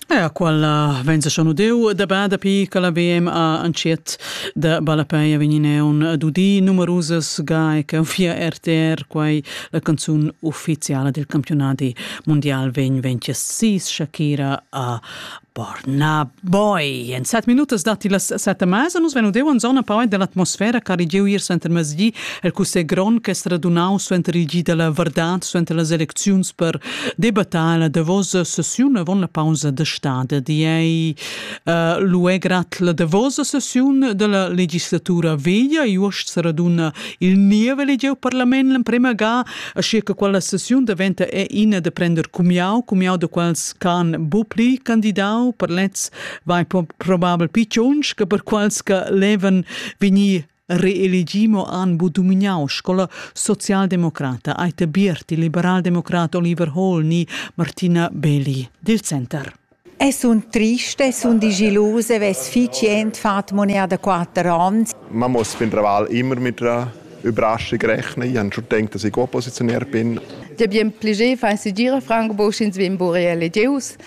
Ja, quella venza schon udeu da ba dapi che la VM ha entschiet da ballapei vegnineun dudi numerusas gai che fia RTR quai la canzun ufficiala del campionati mondial vegn ventia sis Shakira a Borna Boy. En set minutas datti las set e mesa. Nus venu deu en zona poi dell'atmosfera che ha regiu ier suenter mezdi el cussegl grond che è radunau suenter il gi della verdad, suenter las elecziuns per debattar la davosa sessiun avon la pausa de stade. Di ei uh, luè grat la davosa sessiun della legislatura veglia, e uost se raduna il niev elegiu parlament l'emprema ga Aschia che quella sessiun daventa è ina da prender cumiau, cumiau da quels ch'han bu pli candidau per lez vai probabel picciuns che per quels che levan vegnir reelegi mo han bu domignau scola socialdemocrata Aita Bierti, liberaldemocrat Oliver Hall ni Martina Belli dil Center. E sun trist e sun digiilus e vess fich jent fat monea da quatter ans. Man muss fin traval immer mit der Überraschung rechnen. Ich habe schon gedacht, dass ich Oppositionär bin. Ja bien plaisir fa segir Franco sch'ins vegn bu reelegius.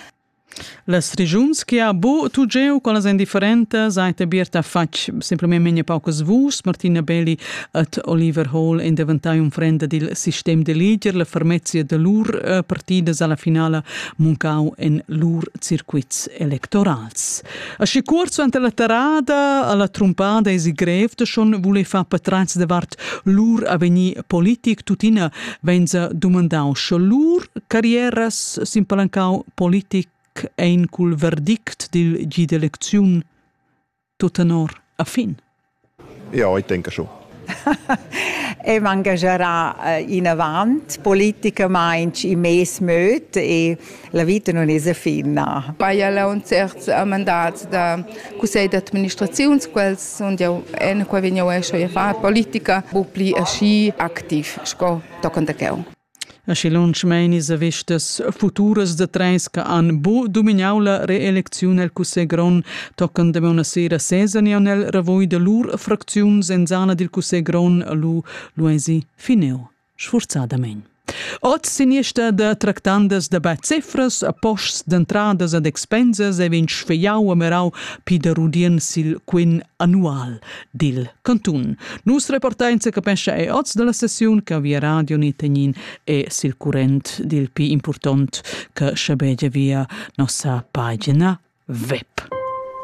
Las regiuns che ha bo tu geu con las indifferentes seit abierta fatg semplicemente paucas vus Martina Belli at Oliver Hall in diventai un frenda dil sistem de leader la fermezia de lur eh, partidas alla finala muncau en lur circuits electorals. Aschi cuort suenter la terrada alla trumpada esi grev de schon vole far patrats davart lur avegnir politic tuttina venza dumandau sche lur carrieras s'impalancau politic ein cul verdict dil gi d'elecziun Tut tenor a fin. Ja, ich denke schon. e mangegerà eh, inavant politicamaintg in mes möt e la vita non es finna. Baia la un terz a mandats da cussegl d'administraziun, quels sunt jau en qua vegn jau escio a far politica, bu pli aschi activ sco toccant a cheu. Aschi lunsch mein ins a vestas futuras da treis che han buca dumignau la reelecziun el cussegl grond tocan damaun a sera sesa ni aunc el ravoi da lur fracziun senzana dil cussegl grond lu lu eisi finiu sfurzadamein. Oz siniesta da tractandas da bad cifras, a posts d'entradas ad expensas e vegn sfegliau a merau Pieder Rudien sil quin annual. dil cantun. Nus reportein secapescha e oz dalla sessiun che via radio ni tegnin e sil current dil pi impurtont che schabegia via nossa pagina web.